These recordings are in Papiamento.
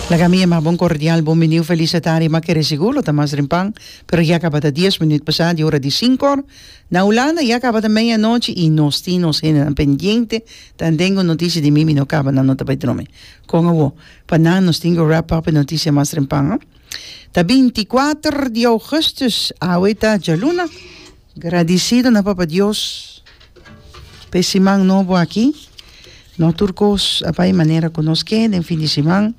Laga mi e mas bon kordial bon biniu felis e tardi ma kere sigu lo ta mas rimpan pero ya kabata dies minut pasá di ora di sinku òr na Hulanda ya kabata meia nochi i nos tin nos hendenan pendiente ta den un notisia di mi mi no kaba nan no ta bai drome kon awo pa nan nos tin ke rap up e notisia mas rimpan ta binti kuater di ougùstus awe ta djaluna. Gradisido na Papa Dios pa e siman nobo aki. No tur kos a bai manera ku nos ke den fin di siman,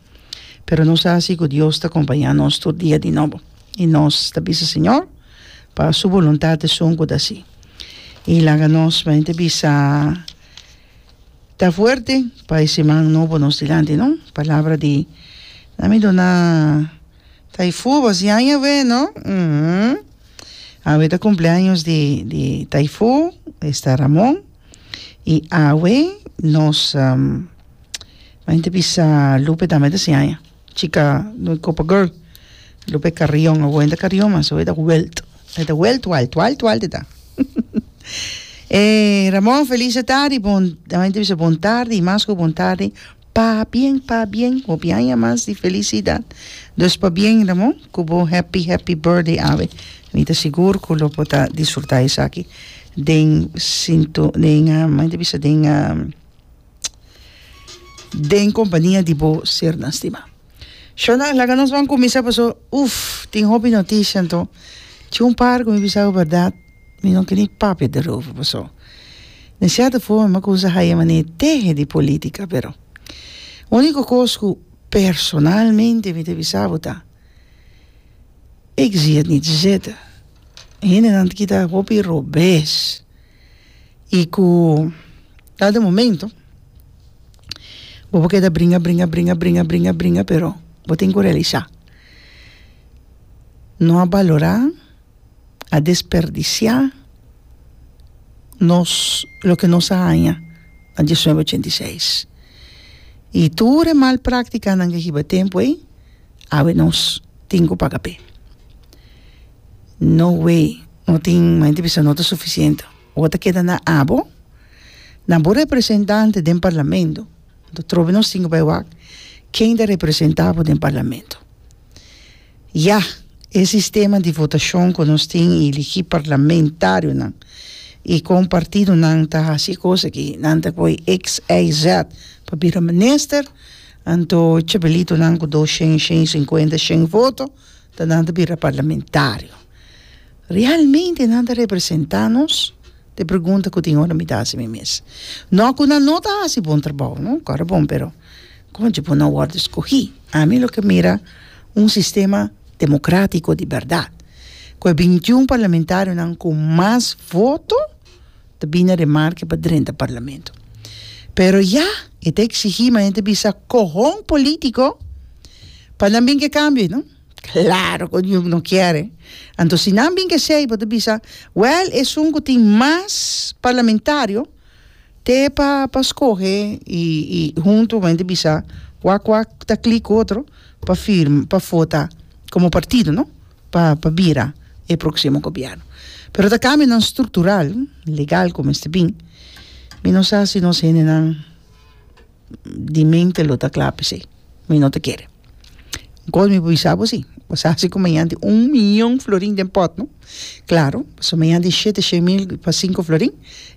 pero nos ta hasi ku Dios ta kompañá nos tur dia di nobo. I nos ta bisa Señor pa Su boluntat esun ku ta si. I laga nos manera ta bisa ta fuerte pa e siman nobo nos dilanti, no? Palabra di, nan mi duna. Taifu bo si aña bueno uhmm awe ta cumpli años di di taifu esta Ramon y awe nos menti bisa Lupe tambe ta si aña chica no copa girl Lupe Carrion awe no ta Carrion mas awe ta Welt e ta Welt Walt Walt Walt e ta eh Ramon felice tardi bon menti bisa bon tardi y mas cu bon tardi. Pabien, pabien, hopi aña mas di felicidad. Dus pabien Ramon, cu bo happy happy birthday awe. Mi ta sigur cu lo bo ta disfruta esaki den sinto, den mandi ta bisa den den compania di bo sernan stima. Shona, laga nos ban cuminsa paso, uff tin hopi noticia anto. Chi un par cu mi bisa awe berdad. mi no kiri papia derover paso den cierto forma mi a cusa haya mane tehe di politica pero unico cos cu personalmente mi ta bisa bo ta ik zie het niet zitten hendenan ta kita hopi robes y cu dado momento bo por keda bringa bringa bringa bringa bringa bringa pero bo tin cu realisa no a balora. a desperdisiá nos loke nos a haña na diesnuebe ochenta i seis i tur e mal práktikanan ke hiba tempu ei awe nos tin ku paga p'e no we no tin mi ta bisa no ta sufisiente bo ta keda na abo na bo representante den parlamento atrobe nos tin ku bai wak ken ta representá bo den parlamento. Ya, e sistema di votashon ku nos tin iligí parlamentarionan i kon partidonan ta hasi kos aki, nan ta koi XYZ pa bira minister, anto chebelitonan ku dos shen, shen i sinkuenta, shen voto ta nan ta bira parlamentario. Realmente nan ta representá nos? T'e pregunta ku tin ora mi ta hasi mi mes. Nò ku nan no ta hasi bon trabou, no? Kòrda bon, pero. Konchi bo no wòrdu skohí? Ami lo ke mira un sistema demokratiko di bèrdat, ku e bintiun parlamentarionan ku mas voto ta bini remarke pa drenta parlamento. Pero ya e ta eksigí ma hende bisa kohon polítiko pa nan bin ke kambio ei no? Klaro ku dios no kiere. Anto si nan bin ke esei bo ta bisa, wèl esun ku tin mas parlamentario, Te pa pa scohe y y hunto men di bisa cua cua ta clic otro pa firm pa fota como partido no pa pa bira e proximo gobierno pero ta cambionan structural legal cu mester bin mi no sa si nos hendenan di mente lo ta kla p'esei mi no ta kere kos mi por bisa bo si bo sa si ku mañanti un miyon florin den pòt no klaro paso mañanti shete shen mil pa sinku florin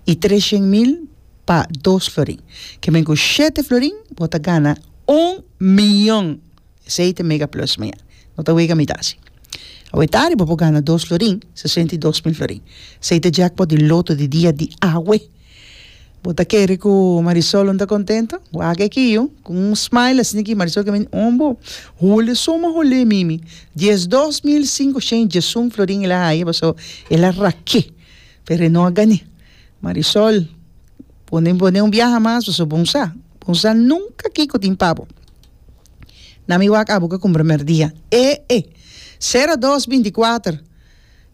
i tres shen mil pa dos florin ke men ku shete florin bo ta gana un miyon esei ta e mega plus mañana no ta wega mitad si awe tari bo por gana dos florin sesenta i dos mil florin esei ta e jackpot di loto di dia di awe Bo ta kere ku Marisol no ta kontento? Wak e kiu ku un smile a sinti ki Marisol ke mindi on bo. Hule suma hule mimi. Dies dos mil sinku shen Jesun Florin e la haya paso e la rake pero e no a gane. Marisol pone pone un biaha mas paso bon sa bon sa nunka kiko tin pa bo. Na mi wak abo ke kumbramer dia. E'e! Sera dos binti kuater.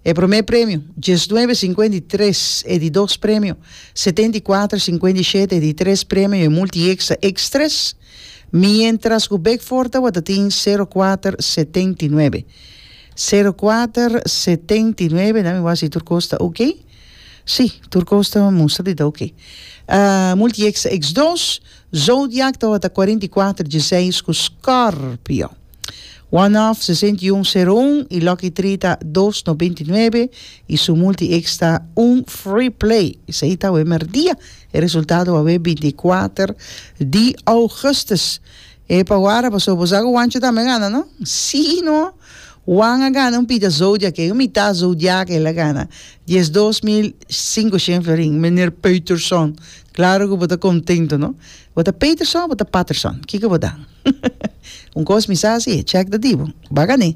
E promé premio, dies nuebe sinkuenta i tres, e di dos premio, setenta i kuater sinkuenta i shete, e di tres premio, e multieksa, eks tres, mientras ku Beckford tabata tin sero kuater setenta i nuebe. Sero kuater setenta i nuebe, dami wak si tur kos ta ok. Si, tur kos ta mustra di ta ok. Multieksa, eks dos, Zodiac tabata kuarenta i kuater dieseis ku Scorpio. Wanhof, sesenta i un, sero un, i Lucky Tree ta dos, noventa i nuebe, i su multi-X ta un free play. Esei ta awe merdia. E resultado awe binti i kuater di ougùstùs. E pa wara pasobra bo sa ku Wancho tambe a gana, no? Sí i no. Wan a gana un pita Zodiac ei, un mitá Zodiac el a gana. Dies dos mil sinkoshent florin, meneer Peuterson. Klaro ku bo ta kontento, no? Bo ta Peterson o bo ta Patterson? Kiko bo ta? Un kos mi sa si, chèk ta di bo. Bakané.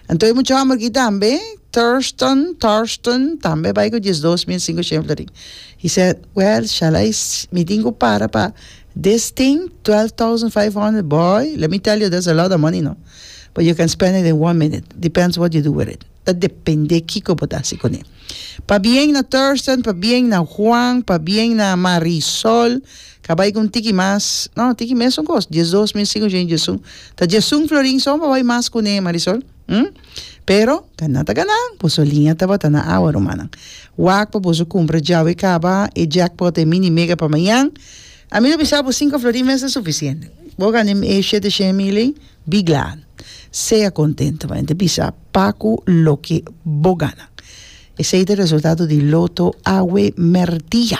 Anto e mucha hòmber ki tambe, Thurston, Torsten, tambe bai ku diesdos mil sinku shen florin. He said, Well, shall I mi tin ku para pa this thing, twelve thousand five hundred, boy, let me tell you, that's a lot of money, no. But you can spend it in one minute. Depends what you do with it. Ta depende kiko bo ta hasi kuné. Pa bien na Thurstan, pa bien na Juan, pa bien na Marisol, ka bai ku un tiki mas, no, tiki mesun kos, dies dos mil sin ochenta y un. Ta diesun florin son pa bai mas kuné, Marisol, hm? Pero ka nan ta gana, boso liña tabata na awa, rumannan. Wak pa boso kumpra djawe i kaba e jackpot, e mini mega pa mañan. Ami lo bisa bo sinku florin mes ta sufisiente. Bo gana e shete shen mil ei, bi glad. Sea kontento, mane ta bisa. Pa cu loke bo gana. Esey ta resultado di loto awe merdia.